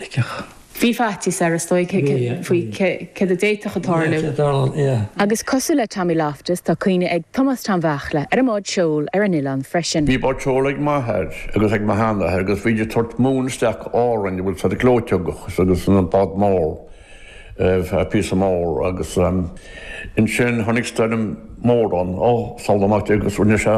Thuigfeadh. Bhí faitíos air, is dóigh, faoi cad a d'fhéadfadh tarlú. Agus cosúil le Tommy Loftus, tá cuimhne ag Tomás Tom Bheachla ar an mbád seoil ar an oileán freisin. Bhí bád seoil ag m'athair agus ag mo sheanathair agus bhídís ag tabhairt móin isteach go Árainn an bhfuil a fhios ad gleoiteog agus an bád mór púcán mór agus ansin tháinig stoirm mór ann, ó, salach amach di agus rinne sé.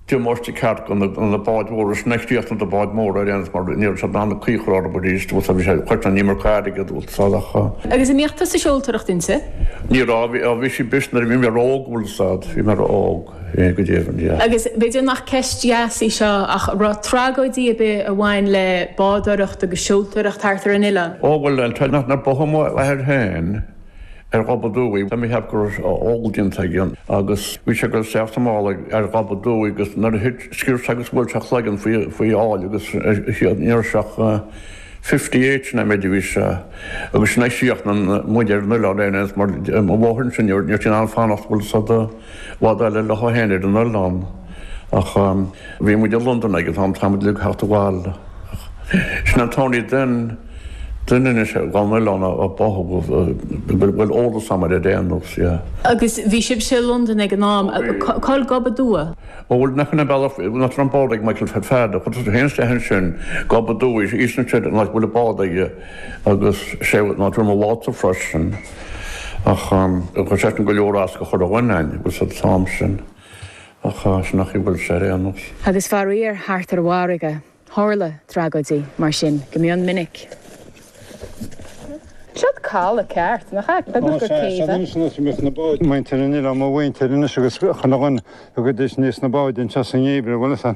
Deir Máirtín ceart na báid mhóra sin ag críochnú do bhád mór ar aon mar níor fhéad ann caoi a chur orthu arís agus bhí sé ag cosaint an iomarca airgead agus fad acha. Agus an mbíodh tusa ag seoltóireacht inti? Ní raibh, bhí, bhí sí briste nuair a bhí mé óg an bhfuil a fhios ad, bhí mé óg, ó go deimhin, yeah. Agus b'fhéidir nach ceist dheas í seo ach an raibh tragóidí ar bith a bhain le bádóireacht agus seoltóireacht thart ar an oileán? Ó bhuel, tá nach, nár báthadh m'athair féin. ar Ghob Aduaidh. Tá mé ag ceapadh go raibh ól déanta aige agus bhí sé ag teacht abhaile ar Ghob Aduaidh agus nuair a thit, sciorr sé agus bhuail sé a chloigeann faoi aill agus siad ní raibh sé ach fifty eight noiméid a bhí sé agus sin é a d'fhág muid ar an oileán ar aon nós mar mo mháthair ansin níor fhéad sí ann fanacht, bhfuil a fhios ad Fada léi féin ar an oileán ach bhí muid i Londain ag an t-am tá muid ag teacht abhaile ach sin an t-aon duine anois ar an oileán a thógadh a bhfuil eolas agam air ar aon nós, yeah. Agus bhí sibhse i Londain ag an am, cá'il Gob Aduaidh? Ó bhuel nach in a bealach, na Trom Bád ag Michael Fat Fada, chuir sé fhéin isteach ansin, Gob Aduaidh, eastern side an áit a bhfuil an bád aige agus sé, na Druma Water freisin. Ach chuir sé sin go leor as do chuile dhuine an bhfuil a fhios ad an t-am sin ach sin an chaoi a bhfuil sé ar aon nós. Agus faraor thart ar an bhfarraige tharla tragóidí mar sin go mion minic. Seod caladh ceart, nach ea? B'fhéidir gur céibh é. Ó, sea, anois anois a mbíodh na báid. Muintir an oileáin, mo mhuintir anois agus chuile dhuine ag cur aníos na báid anseo sa ngeimhreadh, bhuel, is ea.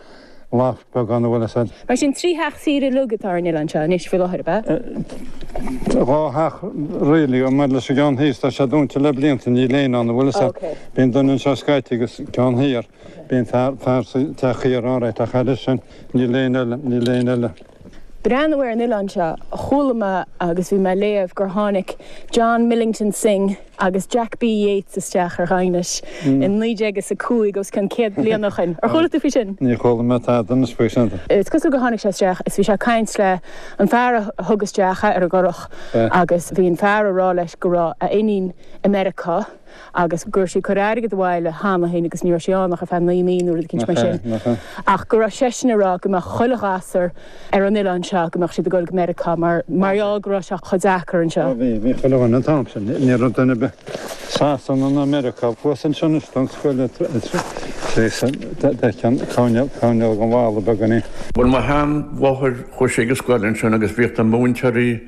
lacht beagán an bhfuil a fhios ad. Mar sin, trí theach saoire uilig atá ar an oileán seo anois faoi láthair, ab ea? Tá dhá theach really, agus maidir leis an gceann thíos, tá sé dúnta le blianta, níl éinne ann an bhfuil a fhios ad. Ok. Bíonn duine anseo scaití agus ceann thiar, bíonn fear, fear sa teach thiar alright ach thairis sin, níl éinne eile, níl éinne eile. Breathnú ar an oileán seo. Chuala mé agus bhí mé ag léamh gur tháinig John Millington Synge agus Jack B. Yeats isteach ar Dhaighinis i naoi déag is a cúig, os cionn céad bliain ó shoin. Ar chuala tú faoi sin? Níor chuala mé tada anois faoi sin. Is cosúil gur tháinig sé isteach is bhí sé ag caint leis an fear a thug isteach é ar an gcurach agus bhí an fear ag rá leis go raibh a iníon i Meiriceá agus go raibh sí ag cur airgead abhaile cheana féin agus ní raibh sí ann ach ar feadh naoi mí nó rud eicínt mar sin ach go raibh seisean ag rá go mbeadh chuile ghasúr ar an oileán seo, go mbeadh siad ag goil go Meiriceá mar, mar gheall go raibh sé chomh deacair anseo. Ó bhí, bhí chuile dhuine an t-am sin, ní raibh duine ar bith, Sasana ná Meiriceá, thuas anseo anois don scoil le tre, tre, tréasan, d'fheicinn coirnéal, coirnéal an bhalla beag an i. Bhuel mo sheanmháthair, chuaigh sí ag an scoil ansin agus bhíodh na múinteoirí,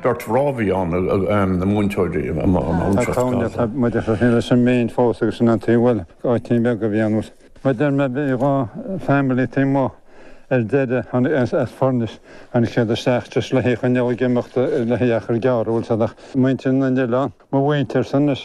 Beirt mhná a bhí ann, na múinteoirí a mba ón Tá seacht caogaid gcos é. atá muid ag cur leis an méin fós agus sin an taobh, bhuel, áitín beag a bhí ann. Mar deir mé, bhí dhá family taobh amuigh ar deireadh tháinig as Foirnis, tháinig siad isteach just le haghaidh choinneáil ag imeacht le haghaidh achar gearr, bhuel, muintir na n-oileán, mo mhuintirsa anois.